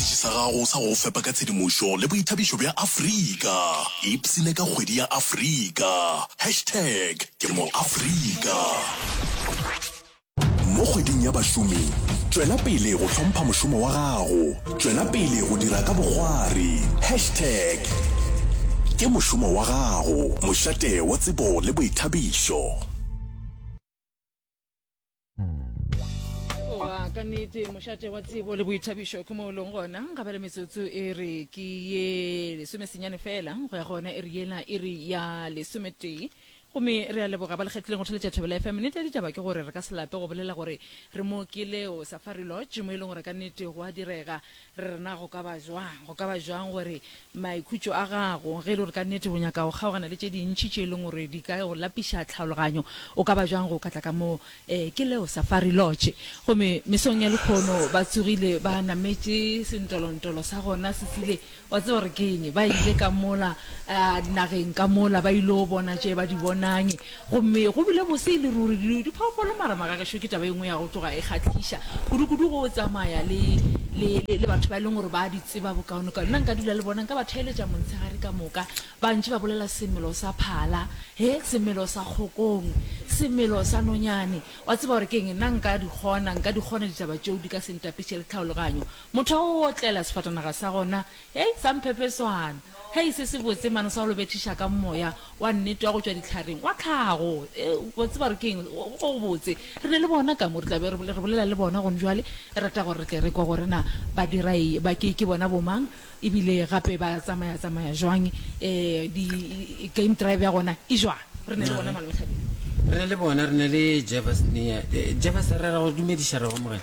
Sephethephethe sa gago sa go fepa ka tshedimošo le boithabišo bja Afrika. Ipsine ka kgwedi ya Afrika. Hashtag Ke MoAfrika. Mo kgweding ya bašomi, tšwela pele go hlompha mošomo wa gago. Tšwela pele go dira ka bokgwari. Hashtag Ke mošomo wa gago, mošate wa tsebo le boithabišo. wa ka nnete mošate wa tsebo le boithabišo ke mo o leng gona ga ba le metsotso e re ke ye lesomesenyane fela go ya gona e re yela e re ya lesometee gomme re a leboga ba lekgetlileng go theletša thobela fm nnete ya ditaba ke gore re ka se lape go bolela gore re mo ke leo safari lodge mo e leng gore ka nnete go a direga Re re, Na go ka ba bjang? Go ka ba bjang gore maikhutšo a gago, ge e le gore ka nnete o nyaka go kgaogana le tše dintši tše e leng gore di ka go lapiša tlhaologanyo, o ka ba bjang go ka tla ka mo ee, ke leo Safari Lodge? Gomme mesong ya lekgono ba tsogile ba nametše sentolontolo sa gona se sile, wa tseba gore ke eng, ba ile ka mola nageng ka mola ba il'o bona tše ba di bonang. Gomme go bile bose e le ruri, di, diphoofolo, mara maka gešo ke taba e nngwe ya go tloga e kgahliša kudukudu go tsamaya le, le, le, le batho ba e leng gore ba a di tseba bokaonekaone. Nna nka dula le bona, nka ba theeletša montshegare ka moka, ba ntše ba bolela semelo sa phala, he, semelo sa kgokong, semelo sa nonyane. Wa tseba gore ke eng? Nna nka di kgona, nka di kgona ditaba tšeo di ka se ntapiše le tlhaologanyo. Motho a otlela sefatanaga sa gona, Hei, sa mphepe swana. Hei, se se botse mane sa go lo bethiša ka Moya wa nnete wa go tšwa dihlareng, wa tlhago. Ew, wa tseba gore ke eng? Go, go botse. Re na le bona ka mo. Re tla be re, re bolela le bona gone bjale. Ke rata gore re tle re kwe gore na ba dira eng, ba ke, ke bona bomang, ebile gape ba tsamaya, tsamaya jwang, e, di, game drive ya gona e jwang. Re na le bona mane mohlabeng. Re na le bona, re na le Jevers nea. Jevers, re ra go dumediša, re go amogela.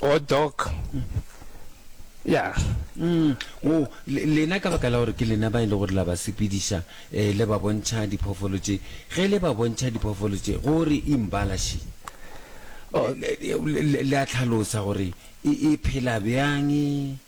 O Doc. Ya. O, le, lena ka baka la gore ke lena ba e le gore la ba sepediša, eh, le ba bontšha diphoofolo tše, ge le ba bontšha diphoofolo tše, go re imbala še? Le, le, le a tlhalosa gore e, e phela bjang?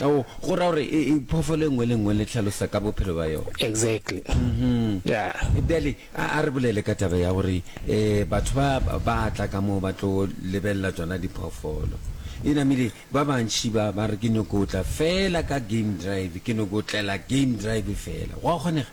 Ao, go ra gore e, e, phoofolo e nngwe le nngwe le tlhalosa ka bophelo ba yona. Exactly. Yeah. Bjale, a, a re bolele ka taba ya gore e, batho ba, ba tla ka moo ba tlo lebelela tsona diphoofolo. E namile, ba bantši ba, ba re ke nyoko tla feela ka game drive, ke nyoko tlela game drive feela. Gwa kgonega?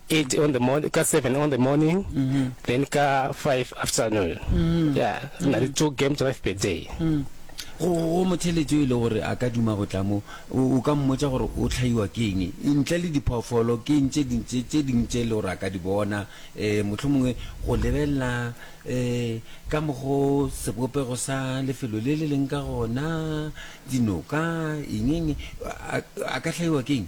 Eight on the morning, ka seven on the morning, then ka five afternoon. Yeah, re na le two game drive per day. Go go motheletsi o e le gore a ka duma go tla mo, o o ka mmotsa gore o tlhaiwa ke eng? Ntle le diphoofolo, ke eng tše ding tše tše ding tše e le gore a ka di bona? Um mohlomongwe go lebelela um ka mokgo sebopego sa lefelo le le leng ka gona, dinoka, eng eng, a a ka hlaiwa ke eng?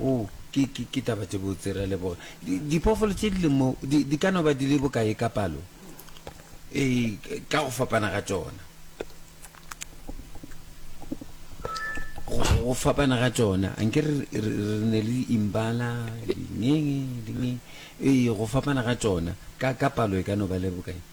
Oo, ke, ke, ke taba tše botse, re a leboga. Di, diphoofolo tše di leng mo di, di ka no ba di le bokae ka palo? Ee, ka go fapana ga tšona. Go, go fapana ga tšona. A nke re, re, re ne le imbala, dinyenge, dingeng. Ee, go fapana ga tšona. Ka, ka palo e ka no ba le bokae?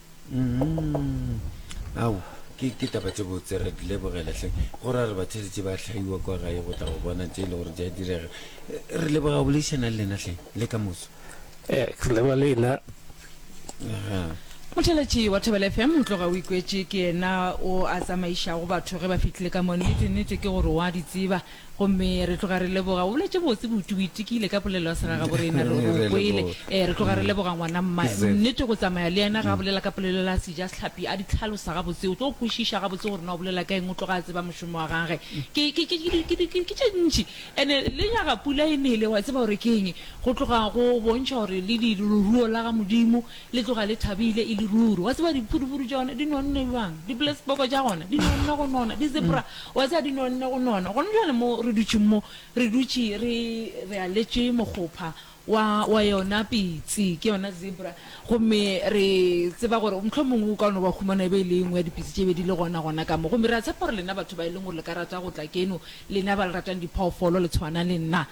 ao ke ke taba tse botse re di lebogela hleng go ra re batheletše ba hlaiwa kwa gae go tla go bona tse e le gore di a direga Eh, re leboga go boleišana le lena hleng le ka moso Eh, re leba le ena Aha. motheletši wa thobela fm o tloga o ikwetše ke yena o a tsamaišago batho ge ba fihlile ka mo nnete nnete ke gore wa di tseba Gomme re tloga re leboga. O boletše botse, Buti. O itikile ka polelo ya segagaborena. Re, re o kwele. Ee, re tloga re leboga, ngwana. Mma, nnete, go tsamaya le yena ge a bolela ka polelo la Sejasehlapi, a di hlalosa gabotse. O tlo kwešiša gabotse gore na o bolela ka eng. O tloga a tseba mošomo wa gage. Ke, ke, ke, ke, ke, ke, ke tše ntši. And-e le nyaga pula e nele, wa tseba gore ke eng. Go tloga go bontšha gore le di, leruo la ga Modimo Le tloga le thabile e le ruri. Wa tseba diphudufudu tša gona di nonne bjang? Dipoleseboko tša gona di nonne go nona, di-zebra wa tseba di nonne go nona. Gona bjale mo re dutšeng mo, re dutše re, re aletše mokgopha wa, wa yona pitsi, ke yona zebra, gomme re tseba gore mohlomongwe o ka no ba humana e be e le e nngwe ya dipitsi tše bedi le gona, gona ka mo. Gomme re a tshepa gore lena batho ba e leng gore le ka rata go tla keno, lena ba le ratang diphoofolo le tshwana le nna,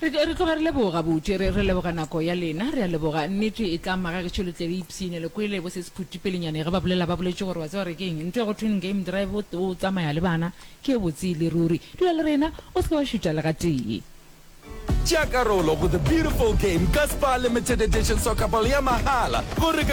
Re, re tloga re leboga, gabotse. Re, re leboga nako ya lena. Re a leboga. Nnete e tla maga gešo le tle le ipsine. Le kwele bo sesephuti pelenyane ge ba bolela, ba boletše gore, wa tseba re ke'ng? Ntho e go thweng game drive, o, o tsamaya le bana, ke e botse e le ruri. Dula le rena. O se ke wa šutha le gatee. Tšea karolo go The Beautiful Game ka Spar Limited Edition Soccer Ball ya mahala go re ka.